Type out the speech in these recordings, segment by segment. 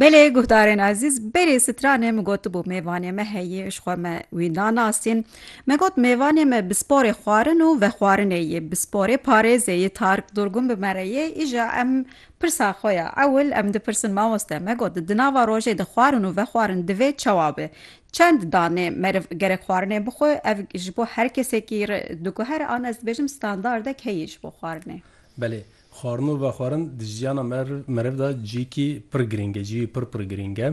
Belê guhdarên ezîz berê stranê min gotibû mêvanê me heye ji xwe me wî nanasîn me got mêvanê me bi sporê xwarin û vexwarinê yê bi sporê parêzê yê Tarik Durgun bi me re yê îja em pirsa xwe ya ewil em dipirsin mamoste me got di nava rojê de xwarin û vexwarin divê çawa be çend danê meriv gerek xwarinê bixwe ev ji bo her kesekî diguhere an ez dibêjim standardek heye ji bo xwarinê. Belê Xwarin û vexwarin di jiyana meriv de cîyekî pir girîng e, cîyê pir pir girîng e.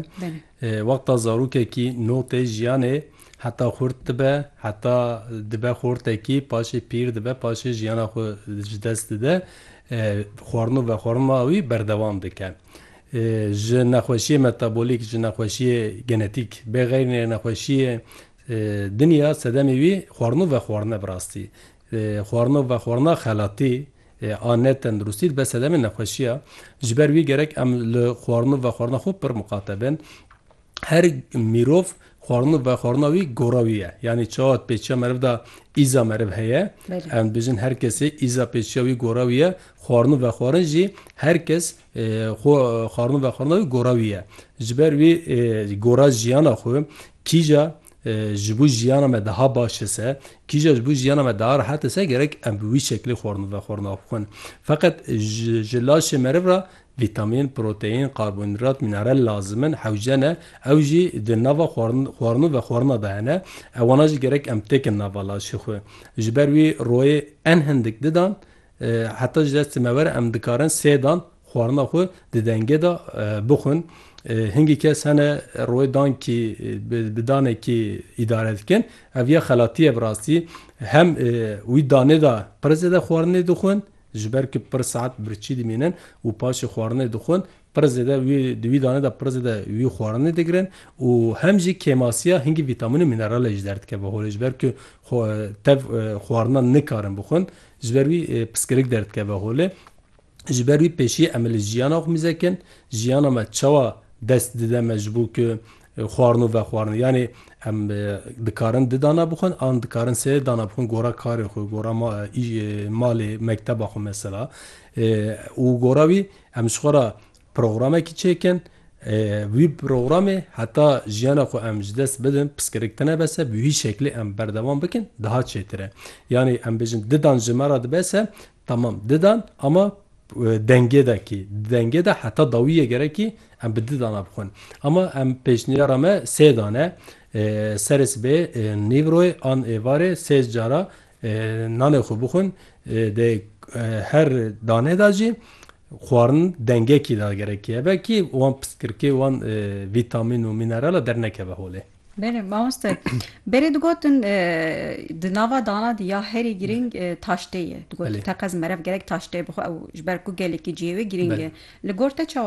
Wexta zarokekî no tê jiyanê heta xurt dibe, heta dibe xortekî, paşê pîr dibe, paşê jiyana xwe ji dest dide, xwarin û vexwarina wî berdewam dike. Ji nexweşiyê metabolîk, ji nexweşiyê genetîk bê xeyrînê nexweşiyê din ya sedemê wî xwarin û vexwarin e bi rastî. Xwarin û vexwarina xelatî a ne tenduristî dibe sedemê nexweşiya. Ji ber wî gerek em li xwarin û vexwarina xwe pir miqate bin. Her mirov xwarin û vexwarina wî gora wî ye. Yanî çawa pêçiya meriv de îza meriv heye. Em dibêjin her kesê îza pêçiya wî gora wî ye. Xwarin û vexwarin jî her kes xwe xwarin û vexwarina wî gora wî ye. Ji ber wî gora jiyana xwe kîja Ji bo jiyana me daha baş e se, kîja ji bo jiyana me daha rehet e se, gerek em bi wî şeklê xwarin vexwarin av bixwin. Feqet ji laşê meriv re vîtamîn, proteîn, karbonhîdrat, mînerel lazim in, hewce ne, ew jî di nava xwarin û vexwarina de hene, ewana jî gerek em têkin nava laşê xwe. Ji ber wî royê en hindik didan Heta ji destê me were em dikarin sê dan xwarina xwe di dengê de bixwin. Hingî kes hene rûyê dankî bi danekî îdare dikin. Ev ya xelatî ye bi rastî. Hem wî danê de pir zêde xwarinê dixwin, ji ber ku pir saet birçî dimînin û paşê xwarinê dixwin. Pir zêde wî di wî danê de pir zêde wî xwarinê digirin û hem jî kêmasiya hingî vîtamîn û mîneralê ji der dikeve holê ji ber ku tev xwarinan nikarin bixwin ji ber wî piskirik derdikeve holê. Ji ber wî pêşî em ê li jiyana xwe mizekin jiyana me çawa dest dide me ji bo ku xwarino vexwarine yanî em dikarin di dana bixwin an dikarin sê dana bixwin gora karê xwe gora malê mekteba xwe mesela û gora wî Em ji xwe re programekî çêkin, wî programê heta jiyana xwe em ji dest bidin, piskirik tune bese, bi wî şeklê em berdewam bikin, daha çêtir e. Yanî em bêjin di dan ji me re dibese, temam di dan ama dengê de kî, di dengê de heta dawiyê gerek î em bi di dana bixwin. Ama em pêşniyara me sê dan e. Serê sibê, nîvroyê an êvarê sê cara Nanê xwe bixwin, di her danê de jî xwarin dengekî de gerekî hebe kî wan pistkirkê wan vîtamîn û mînerala dernekeve holê. Berê mamoste, berê digotin di nava dana de ya herî girîng taştê ye. Digotin teqez meriv gerek taştê bixwe ew ji ber ku gelekî cihê wê girîng e. Li gor te çawa?